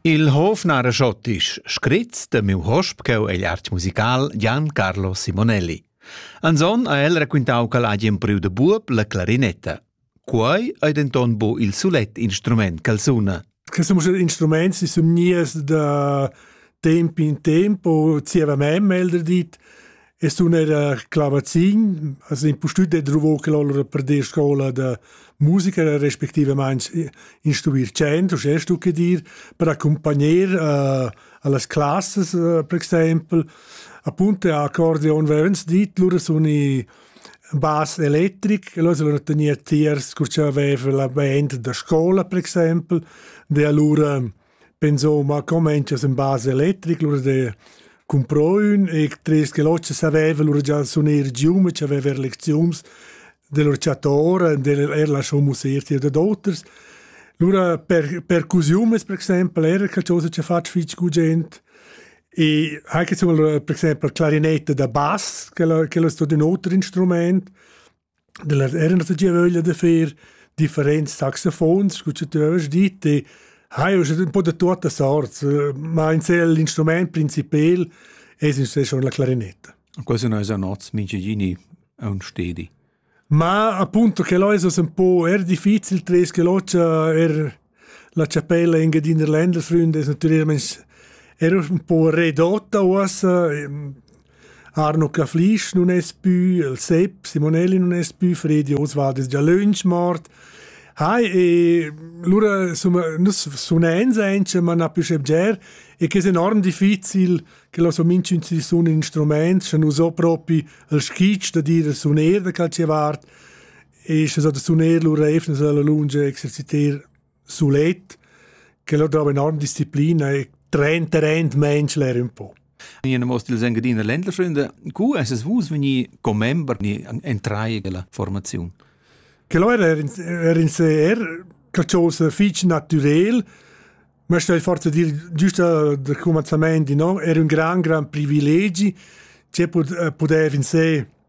Il hof nara schottisch, scrits de miu hosp cheu egl art musical Gian Carlo Simonelli. Anson ha el raquintau che l'ha empriu de buob la clarinetta. Quei ei denton bu il sulet instrument che suna. Che sono instrumenti si sono nies da tempo in tempo, zieva me melder dit, Es un era clavazin, as impustüt e druvò che lor per dir scola da musica respectivament instruir chant, uschè stu che dir, per accompagner uh, a las classes uh, per exaimpel. Appunto accordeon verens dit, lur sun i bas electric, e loro sono tenia tiers, che aveva la band da scuola per esempio, de allora Insomma, comencias in base electric, lura de cumpro ün electrist che l'ossa saveva lura già suner gium e c'aveva er lecziuns del orciator e del er lasciò musir tir de d'auters. Lura per percusiumes per exempel era qualcosa che fatg fitg gugent e anche insomma per exempel clarinette da bass che lo che lo sto de un altro instrument Da las era nossa giavöglia da fer differents saxofons scu cha tü haust dit e hai uschè ün po da tuotta sorts, ma insel l'instrumaint principel es insè schon la clarinetta. Quasi no esa nots mingigini aun stedi. Ma appunto che l'ho es ün po er difficil tres che l'ho cha er La chapella in Engiadina Ländelsründ es natüralmaing eir ün po redotta uossa. Arno Caflisch nun es pü, il Sepp Simonelli nun es pü, Fredi Oswald es già lönch mort. Hai, e lura insomma, nus sunens aint, ma na pü schebger, e que es enorm difficil che lo so minchün si sun in instrument, scha nu so propi il skitsch da dir il suner da calche vart. e sche so da suner lur reifnas alla lunga exercitar sulet che lo dava enorm disciplina e train terrain menschler un po. Ina mostra del Engadiner Ländlerfreunde, cu es es vus veni commember ni entrai della formazione? Che lo era er in se er qualcosa fich naturel, ma sto forza dir giusto del commencement di no, era un gran gran privilegi che podev in se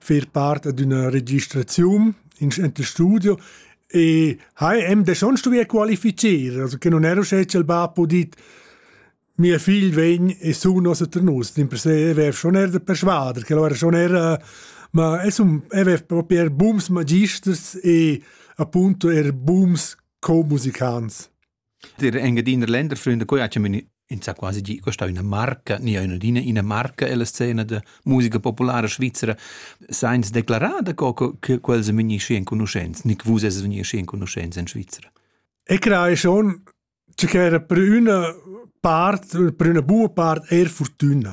fer part d'üna registraziun in ente studio e ha hem de schon stuvier qualifizier, also che non ero sche il ba podit mia figl vegn e su nos a nus, din per se evev schon er de persuader, che lo era schon era ma es un evev proper bums magisters e appunto er bums co-musicants. Dir Engiadiner Länderfreunde quai ha chamin insà quasi gi questa üna marca, nia ün'adina ina marca ella scena da musica populara svizzera, sainza declarar da co co che quels sun vegni schi enconuschents, ni che vus esses vegni schi enconuschents in Svizra. E crei schon, che ch'era per üna part, per üna buona part eir fortüna.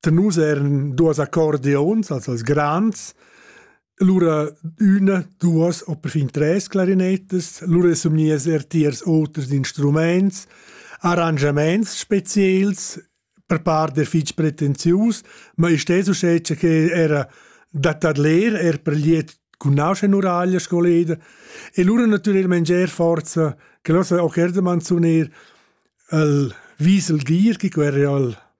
da nus eran duas accordiuns, also als grands, lura üna, duas o perfin tres clarinetas, lura sun gnias er tiers oters instrumaints, arrangiamaints speziels per part der fich pretenzius, ma isch es uschè che era da tadler er per liet cun nauscha nuraglia scoleda e lura natüralment ger forza che l'ossa ocherdeman sun eir el Wiesel Gier, chi querra al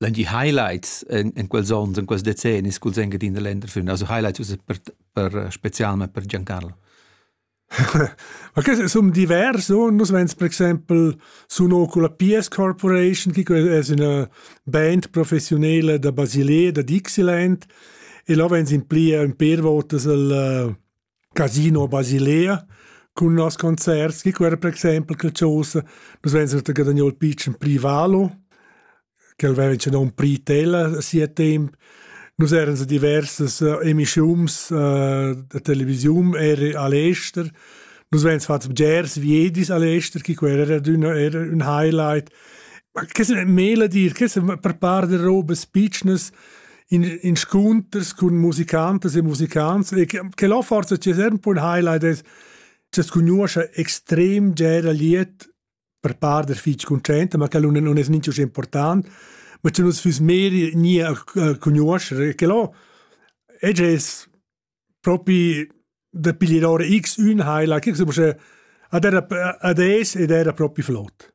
Dann die Highlights in, in quels onns, in quels decennis cul Sängerin der Länder film, also highlights uss per, per eh, specialment per Giancarlo. Ma che sono diversi, nus vens per esempio sono con la PS Corporation, che è una band professionale da Basilea, da Dixieland, e là vens in pli in per volte il Casino Basilea cun nos concerts chi quer per exaimpel che chosa nus vegns da guadagnar il pitschen privalo ch'el veva in nom Pritella a sia temp nus eran sa diversas uh, emischiums uh, da televisiun er a l'ester nus vegns fats bgers viedis a l'ester chi quer era d'una era un highlight ma che se mela dir che se per par de robes pitschnas in inscunters cun musicantas e musicants e che, che là forse c'è sempre un highlight è che conosce extrem gera liet per par der fitch content ma che non non è niente important ma c'è uns füs meri nie conoscere che là e es propi da piglier ora x un highlight che so ad era ad es ed era propi flott